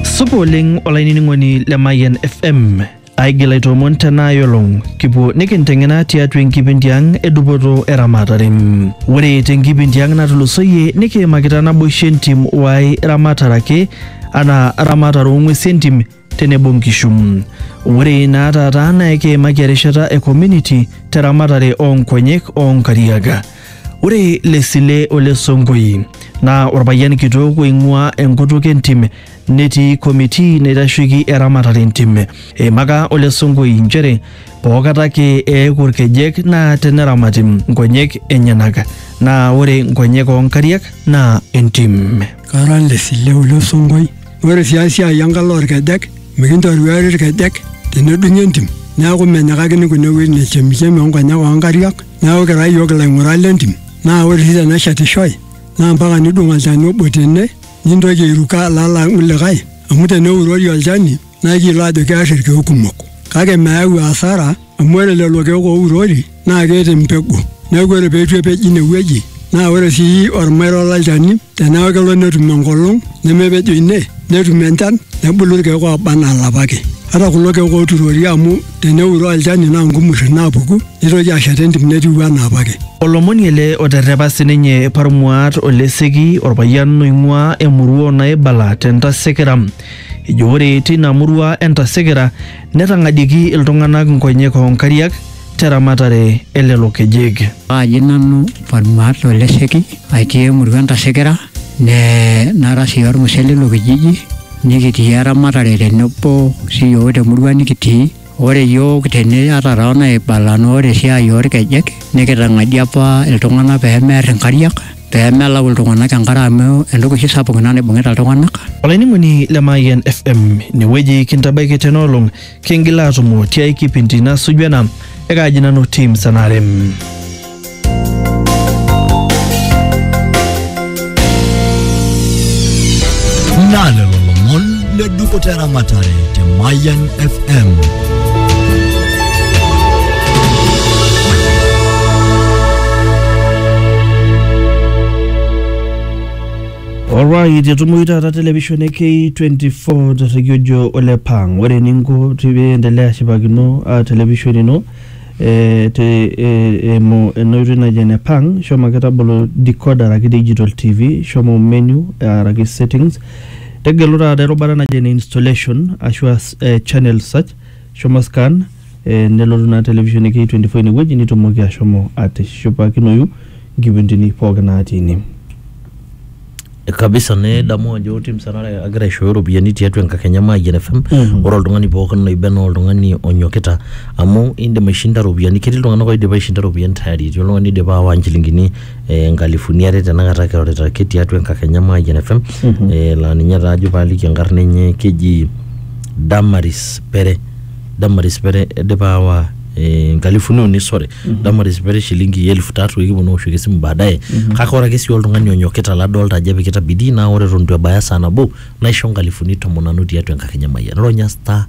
Supa oleng olainining'oni le Mayian FM. Aigil aitoomon tena olong kipuo nikinteng'ena tiatua enkipindi ang e dupoto eramatare. Ore tenkipindi ang natulusoyie nikiimakita naboisho entim wae ramatare ake anaa ramatare oo ng'uesi entim tenebo nkishu. Ore naa taata naa ekiimaki erishata e community te ramatare oo nkonyek oo nkariak. Ore Lesile ole Sonkoi naa orpayian kitok oing'uaa enkutuk entim netii committee naitasheiki eramatare entim. Eimaka ole Sonkoi nchere pookata ake eeku irkejek naa teneramati nkonyek enyenak naa ore nkonyek oo nkariak naa entim. Kara Lesile ole Sonkoi. Ore sii esiai enkalo olkejek, mikintoruari ilkejek tenedung'i entim. Neaku menyikakini kune wuejitin e chemichemi o nkonyek oo nkariak. Neaku kira iyiook ilaing'urak le ntim. Naa ore sii teneshetishoi naa mpaka nidung olchani obo tene nintoki airuko alo alang likae amu teneurori olchani naa ekiyiolo aajo kear ilkeek kumok. Kake meyau asara. amu ore lelo keek ourori naa keeta empegu neeku ore peitu epej ine wueji naa ore sii ormairo lolchani teneeku kelo netum enkolong nemepejo ine netum enchan nebulu irkeek oba anaa ilapa ake ata kulo keek oturori amu teneuroo olchani naa nkumurri naapuku nitoki ashet entim netiu anaa apake. Olomoni ele oterrepa sininye Parmuat Oleseki orpayian oing'uaa emurua o Naibala te Ntasekera. Ejo ore teina murua e Ntasekera Netang'adieiki iltung'anak nkonyek oo nkariak te ramatare e lelo kejek. Paaji nanu Palmaat Olesheki aitii emurua Entasekera nee nara sii olmusee leilo kijiji nikitii eramatare tenebo siyiook temurua nikitii. Ore iyiook tene ata toonaibala naa ore esiai olkejek nikitang'adie apa iltung'anak peemear inkariak. pee melau iltung'anak enkare amu entoki oshi sapuk ina naibung'ita iltung'anak. Olainining'oni le Mayian FM, inewueji kintabaiki tena olong, kingil aatumo tiai kipindi nasuju ena, ekaaji nanu Tim Sanarem. Naa lelo lomon le duko tera matare te Mayan FM. Alright, etumoyu taata television e K24 terregiojo ole pang. Ore eninko piendelea ashipakino uh, television ino eh, te eh, emo enoitoi naji ene pang, shomo ake tabolo decoder araki digital TV, shomo menu araki settings Tegelu taata erubata naji ene installation ashu as eh, channel search, shomo scan eh, nelotu naa television e K24 inewueji nitumoki ashomo atishipakinoyu nkipindini pooki natii ine. kabisa nidamu ajo tim sanare agira aishooyo iropiyiani tiatua enkakenya maayian fm Mhm. ore oltung'ani pookin loiba naa oltung'ani onyokita amu indim aishinda iropiyiani ketii iltung'anak oidipa aishinda iropiyiani tayari etii oltung'ani oidipa aawa nchilingini eh, nkalifuni are tenakata kirorita ake tiatua enkakenya e Mayian FM eh, laa ninye taa ajo paaliki enkarna enye keji Damaris Pere Damaris Pere idipa aawa eh, nkalifuni uni sore Damaris Pere shilingi elfu tatu ekiponu aoshoki esimu baadaye kake ore ake sii oltung'ani onyokita ladolta ajo epikita bidii naa ore eton itu ebaya saa nabo naisho nkalifuni tomon nanu tiatua enkakenya e Mayian ronya star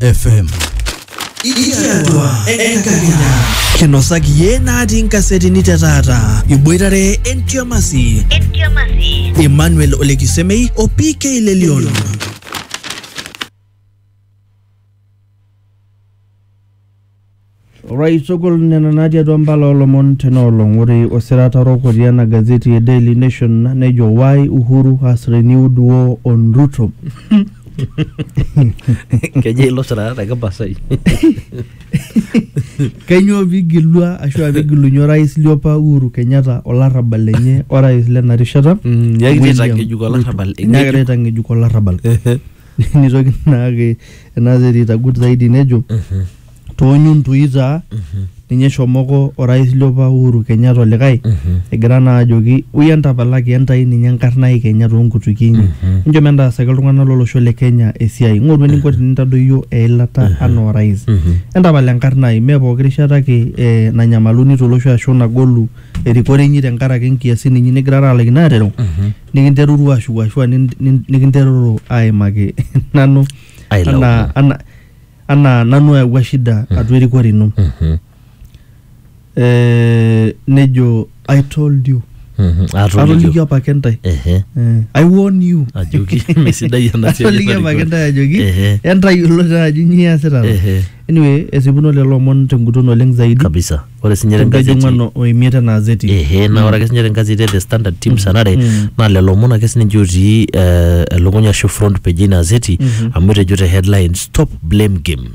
FM. Ikiatua enkakenya. Kinosaki yie natii nkasetini te taata. Iboitare entiamasi. Emmanuel Olekisemei o PK Lelion. Orais sokol nena natii atua mbala olomon tena olong. Ore osirata orok otii ena gazeti e Daily Nation nejo why Uhuru has renewed war on Ruto. Kejo ilo sirata te Kipasai. Kainyoo pigilua ashu a pigilunye orais liopa Uhuru Kenyatta olarrabal lenye orais lena rishata. Nyaakita William aitang'ejuk Ruto. olarrabal. Nyaakita aitang'ejuk olarrabal. nitoki naake ena terit agut zaidi nejo toonyuntui taa ninye eshomoko orais liopa Uhuru Kenyatta olikae egira naa ajoki ui entapalaki entai ninye enkarna ai Kenya toonkutukie inyi enchom entaasaki iltung'anak lolosho le Kenya esiai ng'oru eninko tinintadoyio eilata anaa orais entapala enkarna ai mee pooki rishata ake eh, nanyamaluni tolosho ashu nagolu erikore inyi tenkaraki inkiasin inyi nigirara alaikino atereu nikinterutu ashuku ashu a nin- nin- nikinteruru aimaki nanu Ailaumu. anaa ana- anaa nanu oyawua shida atua erikore ino Mhm, Eh, nejo i told you mhm. atolikio atolikio apake ntae Ehe, Eh, i warn you ajoki mesidai ena siai atolikio apake enarikore. ntae ajoki Ehe. entayiolo taa ajo nyoo iasita Ehe. anyway esipuno lelo omon tenguton oleng zaidi kabisa ore sinye te Enkeju gazeti ng'ano o imiet ena azeti. ehe naa ore ake sinye te gazeti e the standard teams anare naa lelo omon ake sininche otii eh, elukunya ashu front page ina azeti amu etejo te headline stop blame game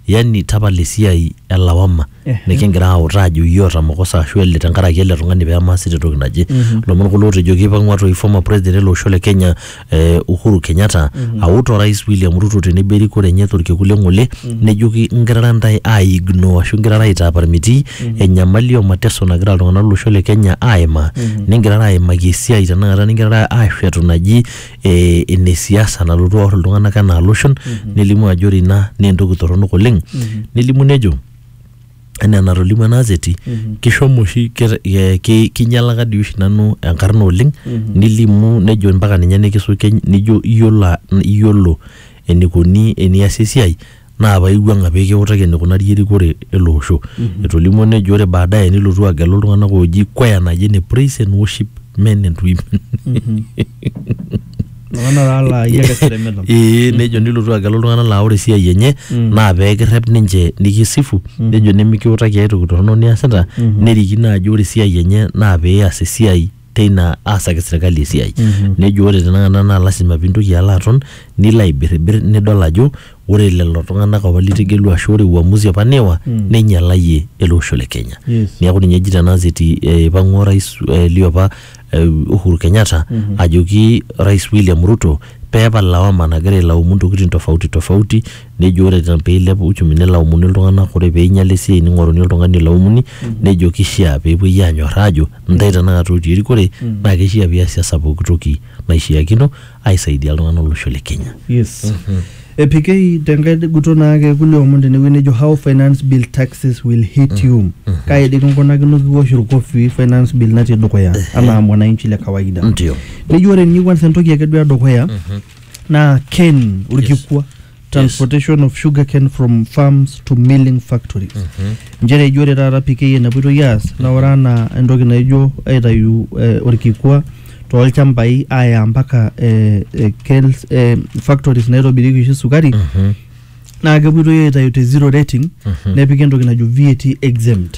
yani tapala esiai elawama Ehe. nikingira autaa ajo iyie oota makosa ashu ele tenkaraki ele tung'ani pemaasita entoki naje lomon kulo otejo keipang'ua toi former president ele osho le kenya eh, Uhuru Kenyatta aut orais William Ruto tenebo erikore enye torkekun le ng'ole nejoki ngirara ntae aigno ashu ngirara aitaaparmitii enyamali o mateso nagira iltung'anak lolosho le Kenya aimaa ningirara aimaki esiai tenakata ningirara aashetu naji eh, ene siasa nalotu aor iltung'anak enaa loshon nelimu ajo ore ina naa entoki torronok oleng nelimu nejo anaa enatolimu ena azeti kishomo oshi ke- ke- ki- kinyalaka dii oshi nanu enkarna oleng nilimu nejo mpaka ninye nikisuke nijo iyiolo a- iyiolo enikoni eniasi esiai naa paa iwuang'a pee kiutaki enikunari erikore ele osho etolimuo nejo ore baadaye nilotu agelu iltung'anak ooji kwaya naji ene praise and worship men and women Iltung'anak taa laa iyie ake seremeta. Ee nejo nilotu agelu iltung'anak laa ore esiai enye naa peekirrep ninche nikisifu nejo nimikiutaki ae toki torrono niasita nerikino ajo ore esiai enye naa pias esiai teina aasaki serkali esiai. Nejo ore tenakata naa lazima piintoki alo aton nilo aibirribir nidol ajo ore lelo tung'anak apa litegelua ashu ore uamuzi apa niwa Mm. neinyalayie ele osho le Kenya. Yes. Neeku ninye eji tena ziti eh, ipang'ua orais eh, liopa eh, Uhuru Kenyatta Mhm. ajoki Rais William Ruto peepal lawama nagira ailaumu ntokitin tofauti tofauti nejo ore te- peilep uchumi nelaumuni iltung'anak ore peinyala esiai ning'oruni oltung'ani olaumuni nejo kishia peepuoi anyorraa ajo ntae tenakata otii erikore Mm. naa kishia piasiasa pooki toki naishiakino aisaidia iltung'anak lolosho le Kenya. Yes. Epikei tenkae guto naake kulie omon tenewueji nejo how finance bill taxes will hit you. Kai dii kinkunakino kiwosh irkofii finance bill natii dukuya anaa mwananchi le kawaida. Ndio. Neji ore ninye kwanza entoki ake duo edukuya naa ken orkikua. transportation of sugarcane from farms to milling factories nchere eji ore taata PK enapuitoi aas naa ore anaa entoki naijo aitayu eh, orkikua toolchambai aaya mpaka eh, eh, KELS, eh, factories naitobirieki oshi sukari naa kepuitoi aitayu te zero rating nepiki entoki najo VAT exempt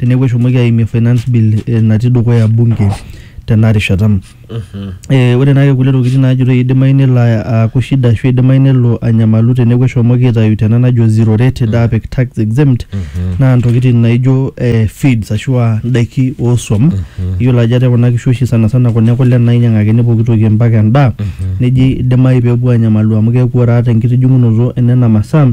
teneeku eshomoki aimie finance bill eh, natii dukuya bunge tena rishata Eh, ore naake kulie tokitin naajitoi idimayu nelo a- aaku shida ashu idimayu nelo anyamalu teneeku eshomoki aitayu tena najo zero rate daa apik tax exempt naa ntokitin naijo eh, feeds ashu aa ndaiki ooswam iyiolo ajo ate kuna kishu oshi sana sana kuna ekule nainyang'akini pooki toki mpaka endaa neji idimayu peepuo anyamalu amu keeku ore ata enkitijing'unoto enena masaa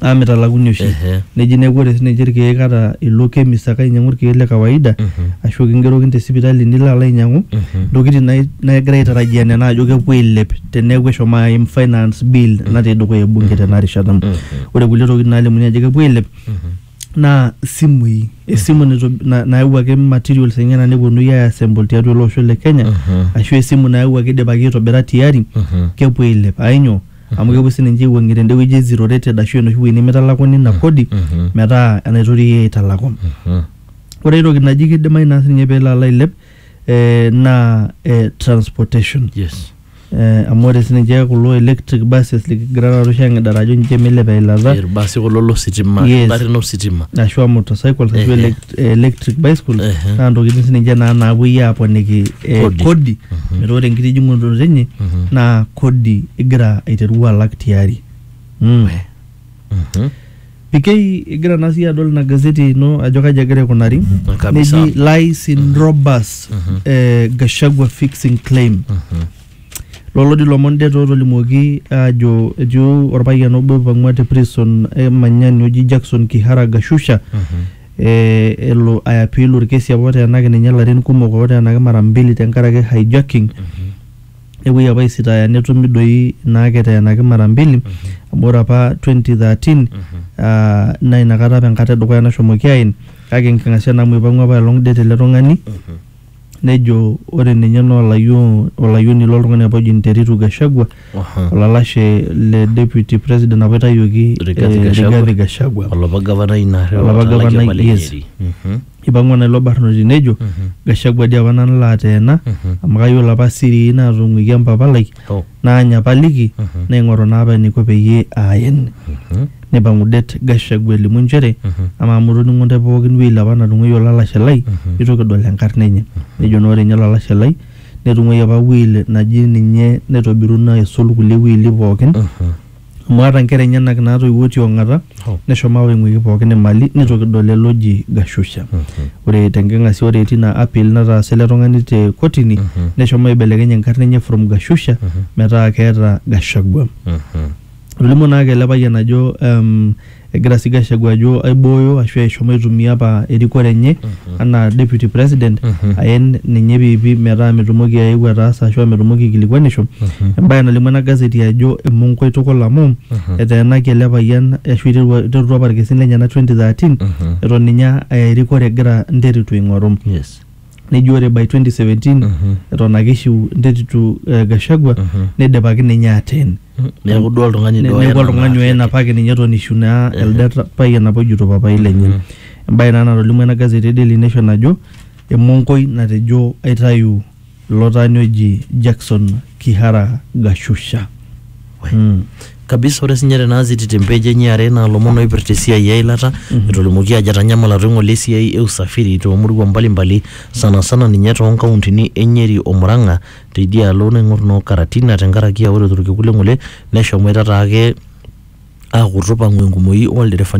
amu mitalakuni oshi Ehe. neji neeku ore sininche irkeek ata ilo chemist ake ainyiang'u irkeek le kawaida ashu kingerokini te sipitali nilo alo ainyiang'u ntokitin nai- naigira aitarajia nena ajo kepuo ailep teneeku eshomo aim finance bill natii dukuya ebunge tena rishata ore kulie tokitin nalimuni ajo kepuo ailep naa isimui esimu nitob- na- nayawuaki materials enyena nepuonui ai assemble tiatua ele osho le kenya ashu esimu nayawuaki idipaki aitobira tiari kepuo ailep ainyoo amu kepuoi sininche aiwuang'ie tende wueji e zero rated ashu enoshi wueji nemitalakuni ina kodi mhm. metaa enaitoki iyie aitalaku Mhm. ore aitoki naji kidimayu naa sininye peelo alo ailep eh, naa eh, transportation yes eh, amu ore sininche kulo electric buses likigira taata oshi ang'idara ajo ninche meilep eilata irbasi kulo lositima Yes. ingarrin ositima ashu a motorcycles ashu Ehe. elek eh, electric bicycle Ehe. naa ntokitin sininche naa naapuoi aaponiki eh, Kodi. kodi metaa ore enkitijing'unoto enye naa kodi igira aiteru alak tiari Mm. Mhm. PK igira naa siyie adol ina gazeti ino ajo kaji egira aikunari Kabisa. neji lies in robust eh, Gachagua fixing claim Lolo di lomon det otolimuoki ajo etiu orpayian obo oipang'ua te prison e Manyani oji Jackson Kiharaga Shusha eh, elo aiapiil orkesi apa oteenaki ninye ilarin kumok oteenaki mara mbili tenkaraki hijacking nepuoi apa aisitaaya netumi doi ina ake eteenaki mara mbili amu ore apa 2013 ah, naa inakata apa enkata edukuya nashomoki aen kake enking'asia naa amu ipang'ua apaelong det ele tung'ani nejo ore ninye naa olayioni, olayioni loltung'ani apa oji Nteritu Gashagwa Aha. olalashe le deputy president apa itayioki eh, Rigathi Gachagua. Rigathi Gachagua olapa gavanai ina are Olapa otalaki gavanai, apa le yes. Nyeri. Mhm. ipang'ua naa ilo barnoti nejo Gachagua dii apa nanu laateena amu kayiolo apa sirii naatung'uikia mpapa lai Oh. naanyapaliki naing'oru naa apa eniko peyie aayen neipang'u det Gachagua elimu nchere amaa amu itoning'o ntae pookin wueji apa natung'uayie olalashe lai eitu kidol enkarna enye nejo naa ore ninye olalashe lai netung'uayie apa will naji ninye naitobiruno aisul kulie wili pookin Amu aata nkera enyenak naatoiwuo ti ong'ata, neshomo aawa eng'uiki pooki e mali neitu kidol lelo oji Gashusha. Ore te nking'asia ore etii ina apil nataasa ele tung'ani te kotini neshomo aibelekeny enkarna enye from Gashusha metaa keeta Gachagua. Etolimuo naake ele payian ajo Egira sii Gachagua ajo aibooyo ashu eshomo aitumia apa erikore enye anaa deputy president aen ninye piipi metaa metumoki aeu ataasa ashu metumoki aikilikuanisho. Embae nalimu ena gazeti ajo emonko itukul amu eteenaki ele payian ashu eiterua eiterutua apa ilkesin lenyena 2013 eton ninye aa erikore egira nterutu aing'oru. nejo ore by 2017 eton ake ishiu entetitu eh, Gachagua neidipaki ninye ateen neeku duo oltung'ani Ne- duo neeku oyena oltung'ani naa oyena ake. apake ninye eton ishu naa elde ta- payian apa ojuto papai lenye embaye naa natolimu ena gazeti e Daily Nation najo emonkoi natejo aitayu ilo taani oji Jackson Kihara Gashusha kabisa ore sinye tena aziti te mpeji enye are naa lomon oipirta esiai eilata etolimuoki ajo etanyamala toing'ole esiai e usafiri toomurua mbalimbali sana sana ninye toonkauntini e Nyeri o Murang'a teidia alo naing'or noo Karatina tenkaraki aa ore torkekun le ng'ole neshomoita taake aaku tupang'u enkumoi olderefani